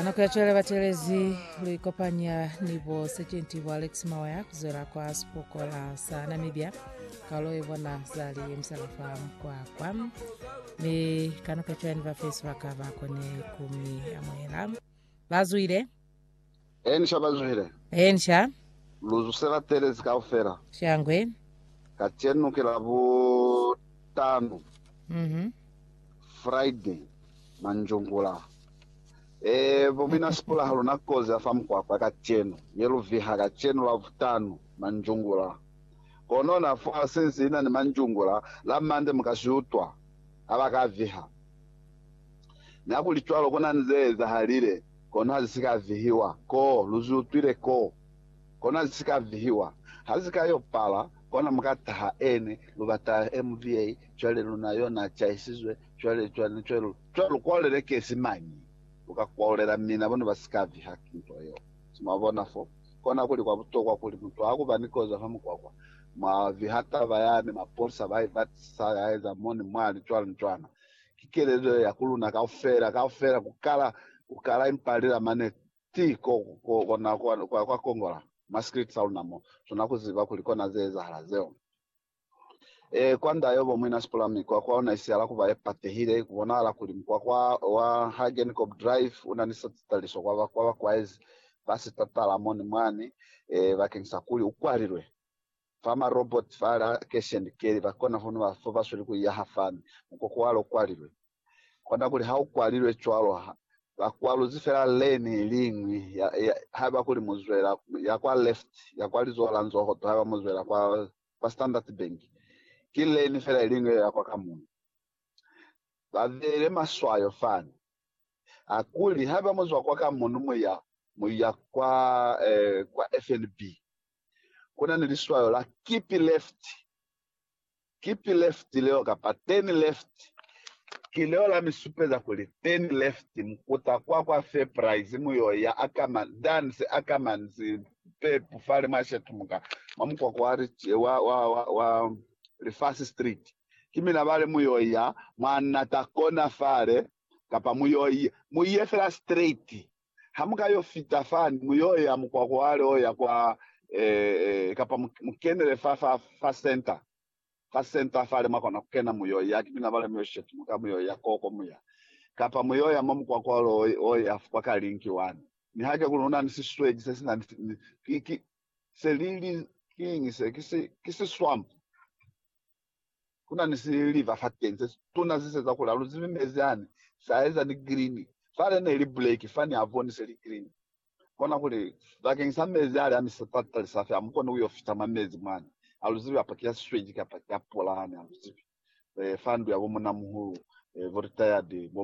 nako ya cwale batelezi lu ikopanya ni bo sergeant bo alex mawaya kuzwela kwa sipokola sa namibia kalo e bona zali emsalafa mkwakwa mi kanako ya cwale ni bafesi ba ka ba kone kumi amohela Ba zwile. Encia ba zwile. Encia. Lu zusela telezi kaufela. Shangwe. Kacenu ki Labutanu. Mhm. Friday, manjungula. E, bo mina Sipula ha luna kozi ya fa mukwakwa kacenu, ye lu viha kacenu Labutanu, manjungula. Kono na fa sinsi ina ni manjungula, la Mande mu ka si utwa, ha ba ka viha. Niakuli cwalo kona ni ze ezahalile, kono ha zi si ka vihiwa. Ko, lu zi utwile ko? Kono ha zi si ka vihiwa. Ha zi ka yo pala, kona mu ka taha ene, lu ba taha MVA, cwale luna yo na cahisizwe, cwale, cwale, cwale lu, cwale lu kwaulelekezi mañi? Lu ka kwaulela mina bona ba si ka viha nto yeo. Se mwa bona fo? Kona kuli kwa butokwa kuli mutu ha ku ba ni kozo fa mukwakwa, mwa viha taba yani, mapolisa ba i batisisa, ya eza mo ni mwali, cwalo ni cwana. Ki kelezo ya ku luna kaufela, kaufela ku kala, ku kala, impa li la mane ti ko, ko, kona kwa, kwa, kwa kongola mwa script sa luna mo, sona ku ziba kuli kona ze ezahala zeo. E, kwa nda yobo muina Sipula, mi kwa, kwa ona isihala kuba ye patehile, ku bonahala kuli mukwakwa wa Hagencob Drive una ni satitaliso kwa ba, kwa ba kwaezi ba sitatala moni mwani, e, bakeng sa kuli u kwalilwe. Fa ma robot fa la cash and carry ba kona ho nwa fo ba sweli ku iya ha fami, mukoko wa lo kwalilwe. Kona kuli ha u kwalilwe cwalo ha ba kwaluzi fela lane i li ñwi ya, ya, haiba kuli mu zwela ya kwa left ya kwa lizoho la nzoho to haiba mu zwela kwa, kwa Standard Bank, ki lane fela i li ñwi ye ya kwa ka muñwi. Ba beile maswayo fani. Ha kuli haiba mu zwa kwa ka muñwi mu ya, mu ya kwa, eh, kwa FNB, kuna ni liswayo la keep left. Keep left leo kapa turn left ki leo la mi supeza kuli turn left mukuta kwa kwa Fairprice mu yo ya Ackermans, Duns, Ackermans, Pep fale mwa shetumuka mwa mukwakwa wa, wa, wa, wa, wa Lifasi Street. Ki mina bale mu yo ya mwa Nata Corner fale, kapa mu yo, mu ye fela straight. Ha mu ka yo fita fani, mu yo ya mukwako wa leo ya kwa, eh, eh, kapa mu, mu kenele fa, fa, fa center. Fa center fale mwa kona ku kena, mu yo ya kipina bale, mu yo shetumuka, mu yo ya koko mu ya. Kapa mu yo ya mwa mukwako wa leo o ya kwa ka link wani. Nihake kuli una ni sisweki se sina ni, ni, ki, ki, se li, li, kiñi se? Ki si, ki si swamp. Ku na ni siliva fateni se situna se seza kuli aluzibi mezi ane se aeza ni grini. Fale ne li buleki fani aboni se li grini. Kona kuli, Bakeng sa mezi ale a mi sipatita li sa fe, amukoni kuyo fita mwa mezi mwani. Aluzibi kapa ki a sisweji kapa ki a pula hane, aluzibi. Fa ndu ya bo munamuhulu, bo retired, bo